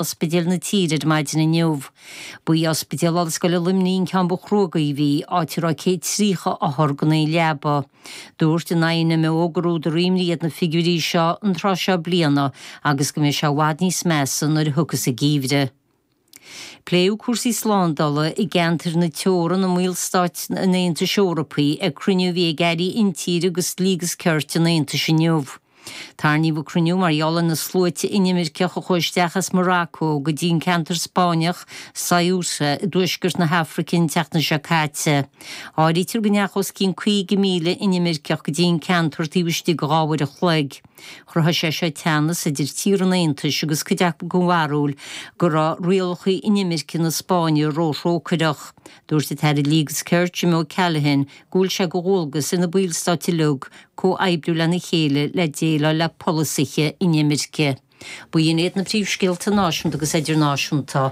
ospidéil na tíre ar maidin inniu. Ba é Ospidéal Ollscoile Luimnigh an ceann ba chruógaí a bhí, áit a raibh 130 othar gan aon leaba. Dúirt an INMO gur údar imní iad na figiúirí seo an tráth seo bliana agus go mbeidh sé i bhfad níos measa nuair a thiocfas an geimhreadh. Pléadh cúrsaí slándala i gceantar na teorann i mBallstáit an Aontais Eorpaigh ag cruinniú a bhí ag Airí Intíre agus Dlí agus Cirt an Aontais inniu. Tarraingíodh an cruinniú mar gheall ar na sluaite inimirceach a chuaigh isteach as Morocco go dtí an ceantar Spáinneach, Ceuta, i dtuaisceart na hAfraice an tseachtain seo caite. Áirítear go ndeacha os cionn 50,000 inimirceach go dtí an ceantar taobh istigh de dhá uair an chloig. Chruthaigh sé seo teannas idir tíortha an Aontais agus cuid acu den bharúil go raibh rialacha inimirce na Spáinne ró-thrócaireach. Dúirt an tAire Dlí agus Cirt, Jim O'Callaghan, go bhfuil sé de dhualgas ar na Ballstáit uilig comhoibriú lena chéile le déileáil le polasaithe inimirce. B'in iad na príomhscéalta náisiúnta agus idirnáisiúnta.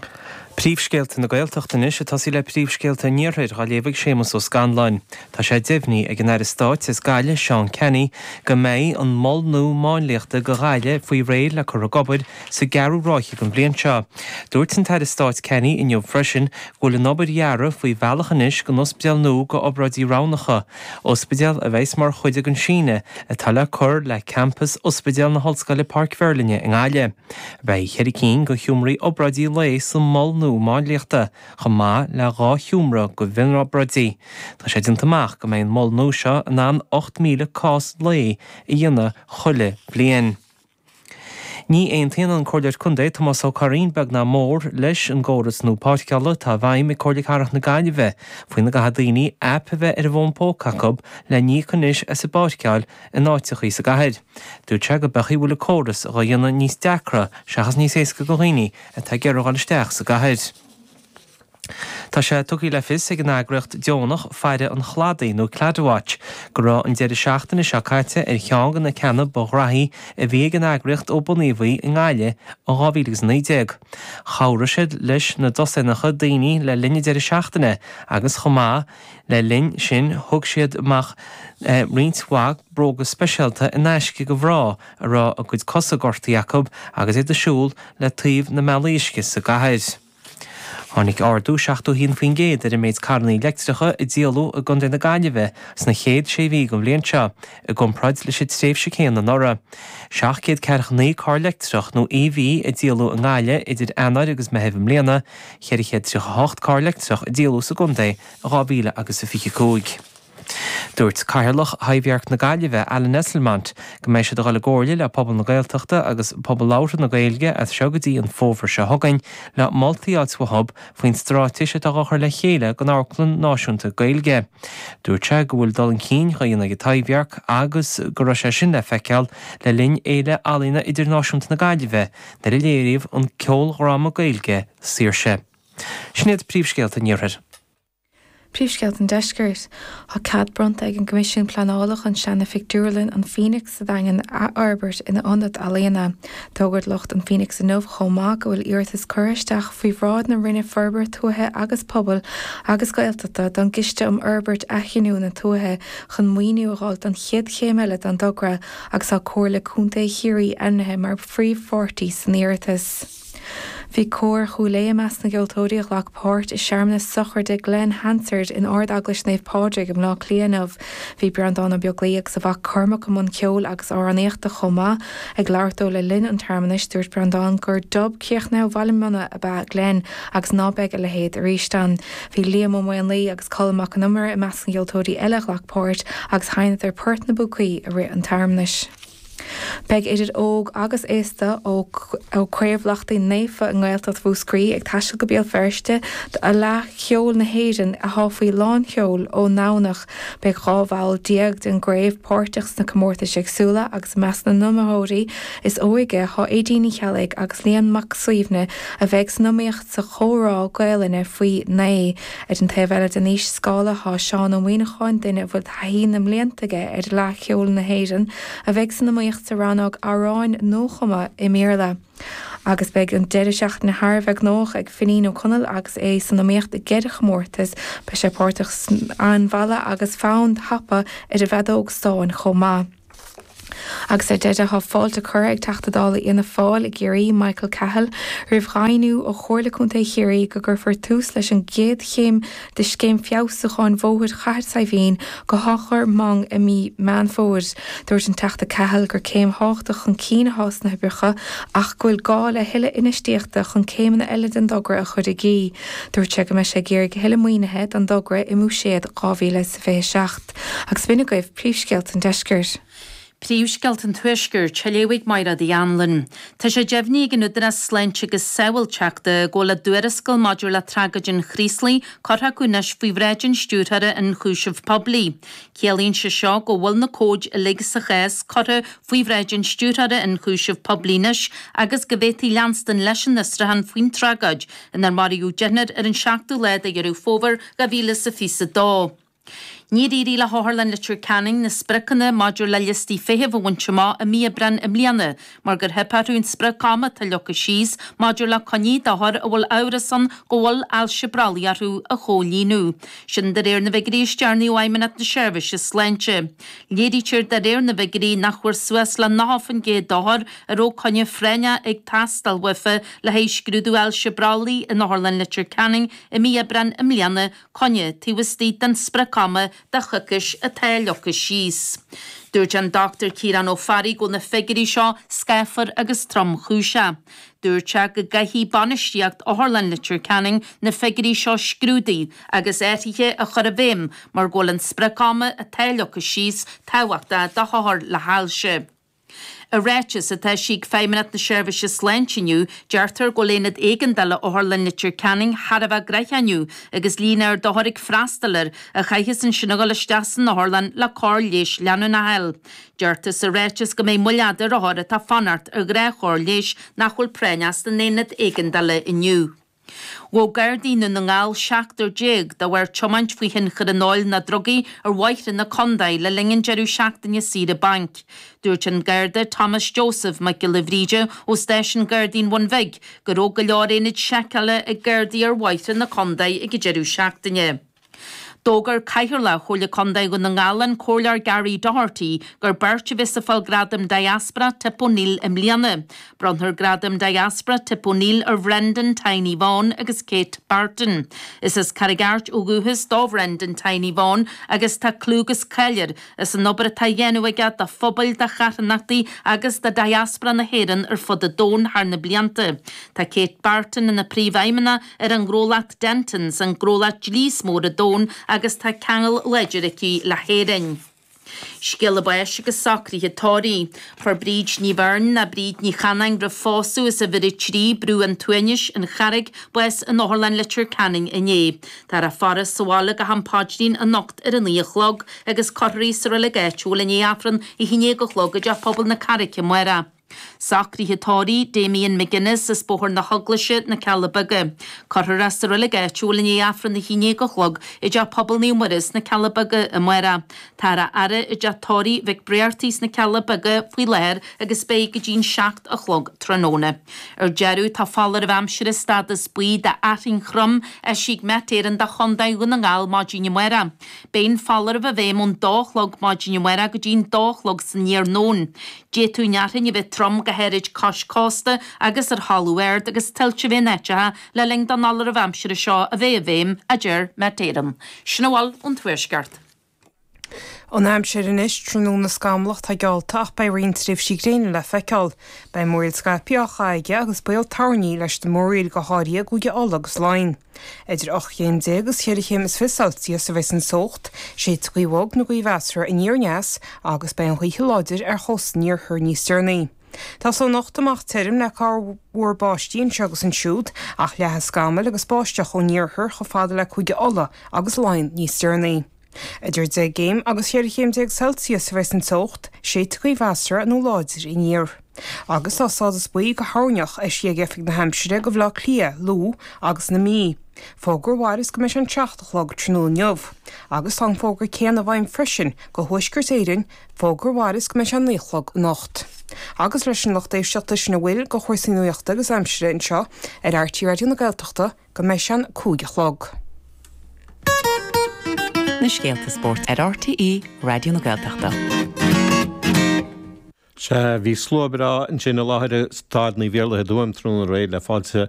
Príomhscéalta na Gaeltachta anois, ag tosaí le príomhscéalta an Iarthair dhá léamh ag Séamus Ó Scanláin. Tá sé deimhnithe ag an Aire Stáit as Gaillimh, Seán Canney, go mbeidh an Mol Nua Máinliachta do Ghaillimh faoi réir le cur ag obair sa gceathrú ráithe den bhliain seo. Dúirt an tAire Stáit Canney inniu freisin go bhfuil an obair dhearaidh faoi bhealach anois don ospidéal nua do obráidí roghnacha, ospidéal a bheas mar chuid den síneadh atá le cur le campas Ospidéal na hOllscoile Páirc Mheirlinne i nGaillimh. Beidh ceithre cinn de sheomraí obráidí lae sa mhol nua máinliachta chomh maith le dhá sheomra do mhionobráidí. Tá sé déanta amach go mbeidh an mol nua seo in ann 8,000 cás lae a dhéanamh chuile bhliain. Ní aontaíonn an Comhairleoir Contae, Tomás Ó Curraoin, beag ná mór, leis an gcóras nua páirceála atá i bhfeidhm ag Comhairle Cathrach na Gaillimhe faoina gcaithfidh daoine aip a bheith ar an bhfón póca acu le n-íoc anois as an bpáirceáil in áiteachaí sa gcathair. Dúirt sé gurb amhlaidh a bhfuil an córas dhá dhéanamh níos deacra seachas níos éasca do dhaoine atá ag gabháil isteach sa gcathair. Tá sé tugtha le fios ag an eagraíocht deonach Faire an Chladaigh nó Claddagh Watch go raibh an deireadh seachtaine seo caite ar cheann de na ceanna ba ghnóthaí a bhí ag an eagraíocht ó bunaíodh í i nGaillimh in 2019. Chabhraigh siad leis na dosaenacha daoine le linn an deireadh seachtaine agus chomh maith leis sin thug siad amach roinnt mhaith bróga speisialta in aisce do mhná a raibh a gcuid cosa gortaithe acu agus iad ag siúl le taobh na mbealaí uisce sa gcathair. Tháinig ardú 71% ar an méid carrannaí leictreacha a díoladh i gContae na Gaillimhe sna chéad sé mhí den bhliain seo i gcomparáid leis an tréimhse céanna anuraidh. 749 carr leictreach nó EV a díoladh i nGaillimh idir Eanáir agus Meitheamh i mbliana, 438 carr leictreach a díoladh sa gcontae in 2025. Dúirt Cathaoirleach Thaibhdhearc na Gaillimhe, Alan Esslemont, go mbeidh siad a dhul i gcomhairle le pobal na Gaeltachta agus pobal labhartha na Gaeilge as seo go dtí an fómhar seo chugainn le moltaí a fháil uathu faoin stráitéis atá dhá chur le chéile don amharclann náisiúnta Gaeilge. Dúirt sé go bhfuil dul chun cinn dá dhéanamh ag Taibhdhearc agus go raibh sé sin le feiceáil le linn Fhéile Ealaíona Idirnáisiúnta na Gaillimhe nuair a léiríodh an ceoldhráma Gaeilge, Saoirse. Sin iad príomhscéalta an iarthair. Príomhscéalta an Deiscirt. Tá cead bronnta ag an gCoimisiún Pleanála chun seana-phictiúrlann an Phoenix sa Daingean a athfhorbairt ina ionad ealaíona. D'fhógair lucht an Phoenix inniu chomh maith go bhfuil iarratas curtha isteach faoi bhráid na Roinne Forbartha Tuaithe agus Pobail agus Gaeltachta don gCiste um Fhorbairt Athghiniúna Tuaithe chun maoiniú a dháil don chéad chéim eile den dtogra agus tá Comhairle Contae Chiarraí ainmnithe mar phríomhpháirtí san iarratas. Bhí Cór Chúil Aodha i measc na gceoltóirí a ghlac páirt i searmanas sochraide Glen Hansard in Ard Eaglais Naomh Pádraig i mBleá Cliath inniu. Bhí Breandán Ó Beaglaoí agus a mhac Cormac i mbun ceoil agus amhránaíochta chomh maith. Ag labhairt dó le linn an tsearmanais, dúirt Breandán gur Dub críochnúil Bhaile Munna ab ea Glen agus ná beidh a leithéid arís ann. Bhí Liam Ó Maonlaoí agus Colm Mac an Iomaire i measc na gceoltóirí eile a ghlac páirt agus sheinneadar port na bpúcaí i rith an tsearmanais. Beidh idir óg agus aosta ó Chraobh Lachtaín Naofa i nGaeltacht Mhúscraí ag taisteal go Béal Feirste do Fhleadh Cheoil na hÉireann atá faoi lán sheoil ón nDomhnach. Beidh 12 bhall den gcraobh páirteach sna comórtais éagsúla agus i measc na n-iomaitheoirí is óige tá Aedín Ní Cheallaigh agus Leon Mac Suibhne a bheidh san iomaíocht sa chomhrá Gaolainne faoi naoi Ar an taobh eile den aois-scála thá Seán Ó Muíneacháin, duine a bhfuil taithí na mblianta aige ar Fhleadh Cheoil na hÉireann, a bheidh san iomaíocht sa rannóg 'Amhráin Nuachumtha i mBéarla'. Agus beidh an deireadh seachtaine thar a bheith gnóthach ag Finín Ó Conaill agus é san iomaíocht i gceithre chomórtas, beidh sé páirteach san fonn mall agus fonn tapa ar an bhfeadóg stáin chomh maith. Agus ar deireadh, tá fáilte curtha ag Teachta Dála Fhianna Fáil i gCiarraí, Michael Cahill, roimh dhaingniú ó Chomhairle Contae Chiarraí go gcuirfear tús leis an gcéad chéim de scéim feabhsúcháin Bhóthair Chathair Saidhbhín go hAchadh Mong i mí Meán Fómhair. Dúirt an Teachta Cahill gur céim thábhachtach chun cinn atá sna hoibreacha ach go bhfuil gá le a thuilleadh infheistíochta chun céimeanna eile den dtogra a chur i gcrích. Dúirt sé go mbeidh sé ag iarraidh a thuilleadh maoinithe don dtogra i mBúiséad 2027. Agus b'in agaibh príomhscéalta an deiscirt. Príomhscéalta an tuaiscirt, á léamh ag Maighread Uí Anluain. Tá sé deimhnithe ag an Údarás Sláinte agus Sábháilteachta go bhfuil a dtuarascáil maidir le tragóid an Chraoslaigh curtha acu anois faoi bhráid an Stiúrthóra Ionchúiseamh Poiblí. Ciallaíonn sé seo go bhfuil na comhaid uilig sa chás curtha faoi bhráid an Stiúrthóra Ionchúiseamh Poiblí anois agus go bhféadfaí leanstan leis an fhiosrúchán faoin tragóid inar maraíodh deichniúr ar an seachtú lá de Dheireadh Fómhair 2022. Níor éirigh le hOtharlann Leitir Ceanainn na spriocanna maidir le liostaí feithimh a bhaint amach i mí Aibreáin i mbliana mar gur theip orthu an sprioc ama atá leagtha síos maidir le coinní d'othair a bhfuil amhras ann go bhfuil ailse brollaigh orthu a chomhlíonadh. Sin de réir na bhfigiúirí is deireanaí ó Fheidhmeannacht na Seirbhíse Sláinte. Léirítear de réir na bhfigiúirí nach bhfuair suas le 90% d'othair a raibh coinne phráinneach ag teastáil uafa le haghaidh scrúdú ailse brollaigh in Otharlann Leitir Ceanainn i mí Aibreáin i mbliana, coinne taobh istigh den sprioc-ama de choicís atá leagtha síos. Dúirt an Dr Ciarán Ó Fearraigh go bhfuil na figiúirí seo scáfar agus tromchúiseach. Dúirt sé go gcaithfidh bainistíocht Otharlann Leitir Ceanainn na figiúirí seo a scrúdú agus athruithe a chur i bhfeidhm mar go bhfuil an sprioc-ama atá leagtha síos tábhachtach do hothair le hailse. I ráiteas atá eisithe ag Feidhmeannacht na Seirbhíse Sláinte inniu, deirtear go bhfuil aonad éigeandála Otharlann Leitir Ceanainn thar a bheith gnoitheach inniu agus líon ard d'othair ag freastal air a chaithfeas ansin a dhul isteach san otharlann le cóir leighis leanúnach a fháil. Deirtear sa ráiteas go mbeidh moill fhada ar othair atá ag fanacht ar ghnáthchóir leighis nach bhfuil práinn leis san aonad éigeandála inniu. Ghabh Gardaí i nDún na nGall seachtar déag de bharr tiomáint faoi thionchar an óil nó drugaí ar bhóithre na condae le linn an deireadh seachtaine saoire bainc. Dúirt an Garda Thomas Joseph Mac Giolla Bhríde ó Stáisiún Gardaí an Bhun Bhig go raibh go leor aonaid seiceála ag Gardaí ar bhóithre na condae ag an deireadh seachtaine. D'fhógair Cathaoirleach Chomhairle Contae Dhún na nGall, an Comhairleoir Gary Doherty, gur beirt a bheas ag fáil Gradam Diaspora Tip O'Neill i mbliana. Bronnfar Gradam Diaspora Tip O'Neill ar Bhrendan, Tiny, Vaughan agus Kate Barton. Is as Carraig Airt ó dhúchas do Bhrendan, Tiny, Vaughan agus tá clú agus cáil air as an obair atá á dhéanamh aige do phobail, do charthanachtaí agus do Diaspora na hÉireann ar fud an domhain thar na blianta. Tá Kate Barton ina Príomhfheidhmeannach ar an ngnólacht Dentons, an gnólacht dlí is mó ar an domhan agus tá ceangal láidir aici le hÉirinn. Scéala báis agus socruithe tórraimh. Fuair Bríd Ní Bheirn, nó Bríd Ní Chanainn roimh phósadh as uimhir a trí, Brú an tSuaimhnis, an Charraig, bás in Otharlann Leitir Ceanainn inné. Táthar á faire sa bhaile go ham paidrín anocht ar a naoi a chlog agus cuirfear í sa reilig áitiúil i ndiaidh Aifreann a haon déag a chlog i dTeach Pobail na Carraice amárach. Socruithe tórraimh Damien McGuinness as Bóthar na hEaglaise, Na Cealla Beaga. Cuirfear é sa reilig áitiúil i ndiaidh Aifreann a haon déag a chlog i dTeach Pobail Naomh Muire sna Cealla Beaga amárach. Táthar á fhaire i dTeach Tórraimh Mhic Brearty sna Cealla Beaga faoi láthair agus beidh go dtí'n seacht a chlog tráthnóna. Ar deireadh, tá foláireamh aimsire stádas buí d'fhearthainn throm eisithe ag Met Éireann do Chontae Dhún na nGall maidin amárach. Beidh an foláireamh i bhfeidhm ón dó a chlog maidin amárach go dtí'n dó a chlog san iarnóin. D'fhéadfadh an fhearthainn a bheith trom go háirid cois cósta agus ar thalamh ard agus tuilte i mionáiteacha le linn don fholáireamh aimsire seo a bheith i bhfeidhm, a deir Met Éireann. Sin a bhfuil ón Tuaisceart. An aimsir anois, tráthnóna scamallach, tá geallta ach beidh roinnt tréimhsí gréine le feiceáil. Beidh múraíl scaipthe á chaitheamh aige agus baol toirní leis na múraíl, go háirithe i gCúige Uladh agus Laighean. Idir ocht gcéim déag agus cheithre chéim is fiche Celsius a bheas an teocht, séidfidh gaoth bhog nó gaoth mheasartha aniar aneas agus beidh an ghaoth seo láidir ar chósta an iarthair níos deireanaí. Tosóidh anocht amach tirim le corrmhúr báistí anseo agus ansiúd ach leathfaidh scamaill agus báisteach ón iarthar chomh fada le Cúige Uladh agus Laighean níos deireanaí. Idir deich gcéim agus ceithre chéim déag Celsius a bheas an teocht, séidfidh gaoth mheasartha nó láidir aniar. Agus tá stádas buí do thoirneach eisithe ag Oifig na hAimsire do Bhaile Átha Cliath, Lú agus na Mí. Fógra a mhaireas go mbeidh an seacht a chlog tráthnóna inniu. Agus tá an fógra céanna i bhfeidhm freisin do Thuaisceart Éireann, fógra a mhaireas go mbeidh an naoi a chlog anocht. Agus leis sin a lucht éisteachta sin a bhfuil de chúrsaí nuachta agus aimsire anseo ar RTÉ Raidió na Gaeltachta, go mbeidh sé a cúig a chlog. na scéalta spóirt ar RTÉ Raidió na Gaeltachta. Sea, bhí slua breá ansin i láthair i Staid Naomh Iarlaith i dTuaim tráthnóna réidh le fáilte a.